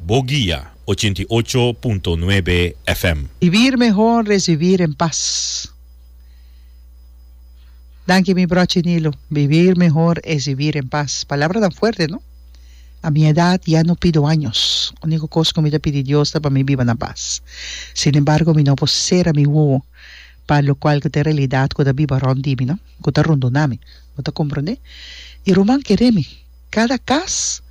Bo guia ochenta i ocho punto nuebe FM. Vivir mehor es vivir en paz. Danki mi brochi Nilo. Vivir mehor es vivir en paz. Palabra tan fuerte no. A mi edad ya no pido años. Unico cos cu mi ta pidi Dios ta pa mi biba na paz. Sin embargo mi no por cera mi wowo pa locual cu ta e realidad cu ta biba rond di mi no. Cu ta rundona mi. Bo ta comprende? Y ruman kere mi. Kada kas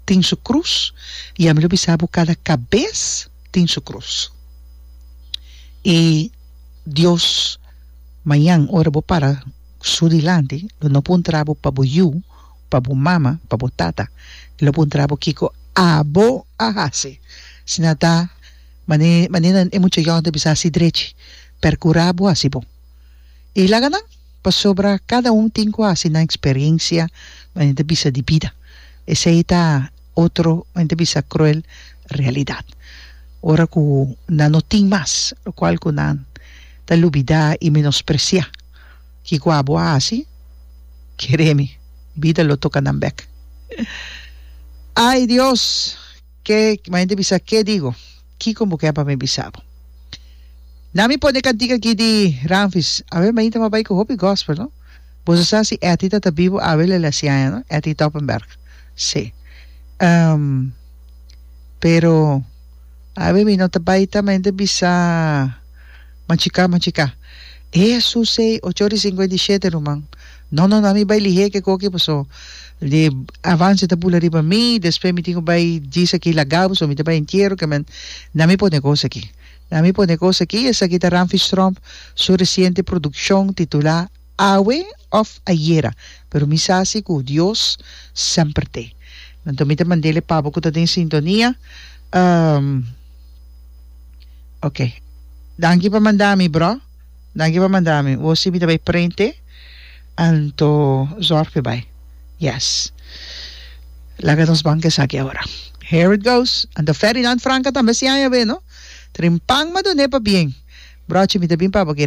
tin su krus, i ami lo bisa bo, kada kabes tin su krus. I Dios mañan, ora bo para Su dilanti, lo no puntra bo pa bo yu, pa bo mama, pa bo tata. E lo puntra bo kiko abo a hasi. Asina ta, manera e mucha yòn ta bisa si drechi, perkura bo hasi bon. E laga nan, pasobra kada un tin ku a hasi nan eksperensia manera ta bisa di bida. Esei ta otro manera ta bisa kruel realidat. Ora ku nan no tin mas lokual ku nan ta lubidá i menospresiá kiko a bo a hasi, kere mi, bida lo toka nan bèk. Ai Dios! Ke bo hende bisa ke digo? Kiko bo ken pa mi bisa bo? Na mi pone kantika aki di Ramfis. Awe mainta m'a bai ku hopi gospel, no? Boso sa si Etty ta ta bibo awe lele a si aña, no? Etty Toppenberg. Sí. Ehm, pero awe mi no ta bai ta mainta bisa machiká, machiká. Esusey, ocho ora i singenta i shete, ruman. No no no mi bai lihé ke koki paso de avance ta bula riba mi despe mi tin ku bai djis aki laga paso mi ta bai entiero ke men na mi pone kos aki na mi pone kos aki esaki ta Ramfis Tromp su resiente produkshon titulá Awe of Ayera pero mi sa si ku Dios semper te anto mi ta mandele pa bo ku ta den sintonia oke danki pa manda mi bro. Danki pa manda mi. Bo si mi ta bai prente anto zorg pi bai. Yes. Laga nos banca esaki awor. Here it goes. Anto Ferdinand Franca tambe siaña a be no. Trin pan ma done pa bien. Brochi mi ta bin pa bo.